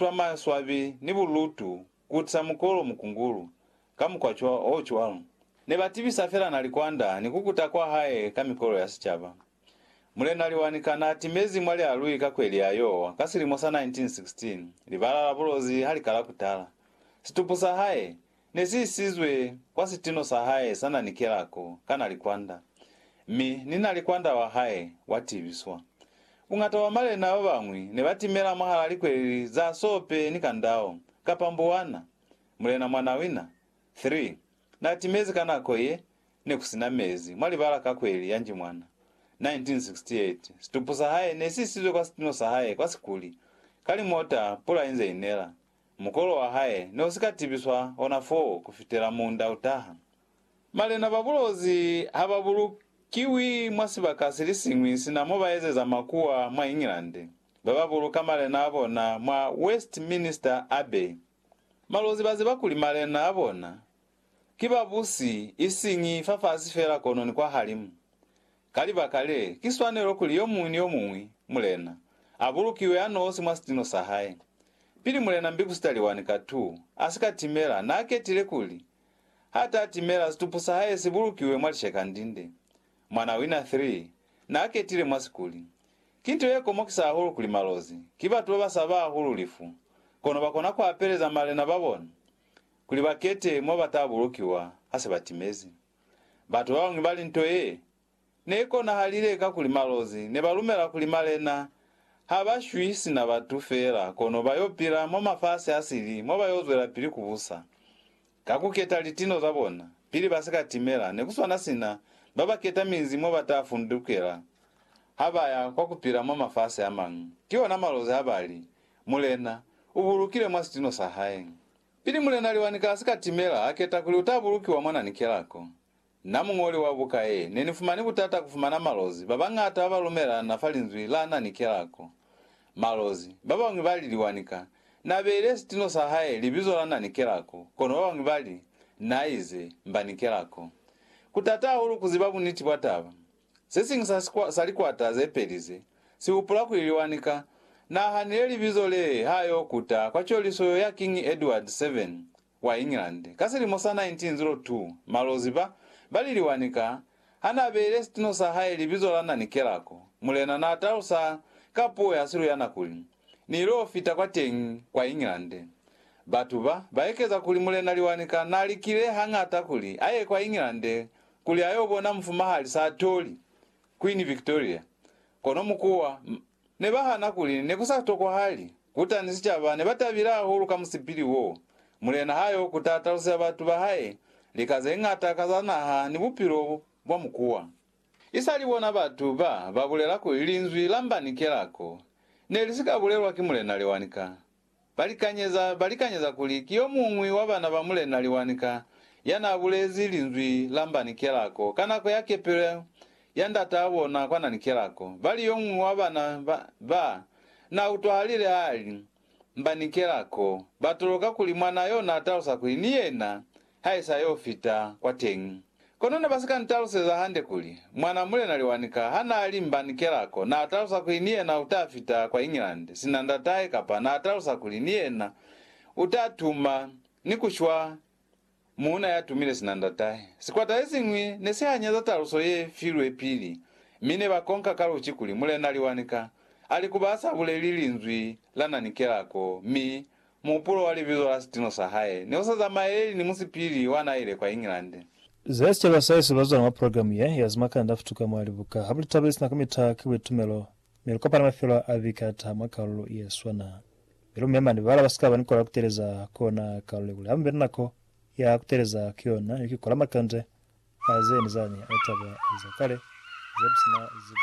twa maswabi ni bulutu kutisa mukolo mukungulu ka mukwa o cwalo. Ne ba tibisa fela na likwanda ni kukuta kwa hae ka mikolo ya sicaba. Mulena Liwanika na timezi mwa lialui ka kweli ya Yowa ka silimo sa 1916, libala la bulozi ha li kala kutala. Situpu sa hae Ne si isizwe kwa sitino sa hae sa na ni kelako ka na likwanda, mi ni na likwanda wa hae wa tibiswa. Buñata bwa malena ba bañwi ne ba timela mwahala likweleli za sope ni kandao, kapa mbuwana. Mulena Mwanawina, 3, na timezi ka nako ye ne ku sina mezi mwa libala ka kweli ya Njimwana, 1968. Situpu sa hae ne si isizwe kwa sitino sa hae kwa Sikuli, ka limota pula inze inela. Mukolo wa hae ne u si ka tibiswa ona foo ku fitela muunda u taha. Malena ba bulozi ha ba bulukiwi mwa sibaka se li siñwi sina mo ba ezeza makuwa mwa England, ba ba buluka malena a bona mwa Westminster Abbey. Malozi ba ziba kuli malena a bona Ki babusi, isiñi fafasi fela kono ni kwahalimu. Ka libaka le, ki swanelo kuli yomuñwi ni yomuñwi, Mulena, abulukiwe anosi mwa sitino sahae. Pili Mulena Mbikusitaliwani ka tu asika timela, naaketile kuli, Hata timela situpu sahae sibulukiwe mwa lishekandinde. Mwana wina 3 naaketile mwa sikuli. Ki nto yekomokisa hahulu kuli malozi, ki batu babasaba hahulu lifu, kono bakona kuapeleza malena babona. kuli ba kete mo ba ta bulukiwa ha se ba timezi. Batu ba bañwi ba li nto ye ne i konahalile kakuli malozi ne ba lumela kuli malena ha ba shwi sina batu feela kono ba y'o pila mwa mafasi a sili mo ba y'o zwelapili ku busa ka ku keta litino za bona pili ba si ka timela ne ku swana sina ba ba keta minzi mo ba ta fundukela ha ba ya kwa ku pila mwa mafasi a mañwi. Ki ona malozi ha ba li, Mulena u bulukile mwa sitino sa hae. Pili Mulena Liwani ka sika timela a keta kuli uta bulukiwa mwa nani kelako. Na muñoli wa buka ye, ne ni fumani butata ku fumana malozi ba bañata ba ba lumelana fa linzwi la nani kelako. Malozi, ba bañwi ba li Liwani ka, na beile sitino sa hae libizo la nani kelako, kono ba bañwi ba li, Na ize, mbani kelako. Ku tata hahulu ku ziba buniti bwa taba. Se siñwi sa, sa, sa likwata ze peli ze, si hupula kuli liwani ka. Nahanile libizo lee ha yo kuta kwa coliso yo ya Kiñi Edward Seven wa England, ka silimo sa 1902, malozi ba, ba li liwani ka, ha na beile situno sa hae libizo la Nani Kelako, mulena na talusa ka puo ya siluyana kuli, Ni ilo fita kwa teñi, kwa England. Batu ba, ba ekeza kuli mulena liwani ka na likile hañata kuli a ye kwa England kuli ayo bona mufumahali Saatoli, Queen Victoria, kono mukuwa ne ba hana kuli ne ku sa tokwahali kuta ni sicaba ne ba tabile hahulu ka musipili wo. Mulena ha yo kuta talusela batu ba hae lika ze ngata ka za naha ni bupilo bwa mukuwa. I sali bona batu ba ba bulela kuli linzwi la mba ni kelako ne li si ka bulelwa ki mulena Lewanika. Balikanyeza balikanyeza kuli ki yomuñwi wa bana ba Mulena Liwanika yanaabulezi linzwi la Mba ni Kelako ka nako ya kepelo ya ndataa bona kwa Nani Kelako. Bali yomuñwi wa bana ba ba nautwahalile haali, Mba ni Kelako, batoloka kuli mwanaa yo naatalusa kuli ni yena Ha i sa y'o fita kwa teñi. Kono ne ba si ka n'taluseza hande kuli, Mwan'a Mulena Liwanika ha n'a li mba ni kelako, n'a talusa kuli ni yena u ta fita kwa England sina ndat'ahe kapa n'a talusa kuli ni yena u ta tuma ni ku shwa muuna ya tumile sina ndat'ahe. Sikwata se siñwi ne si hanyeza taluso ye filwe pili, mi ne ba konka ka luci kuli Mulena Liwanika a li ku ba sa buleli linzwi la na ni kelako mi Muhupulo wa libizo la sitino sa hae ne u sa zamaeleli ni musipili wa n'a ile kwa England. Za sicaba sa hesu bazwani mwa programu ye ya zimakanda futuka mwa libuka ha bu li tabeli sina ka mita ki buitumelo, mi lu kopana mafelo a viki a taha mwa kalulu ye swana. Mi lu mema ni bala ba sikaba ni kola kuteleza ku ona kalule kuli hamu be ni nako ya kuteleza ki yona ni ki kola makande a ze ni zani a litaba za kale ze bu si na zibo.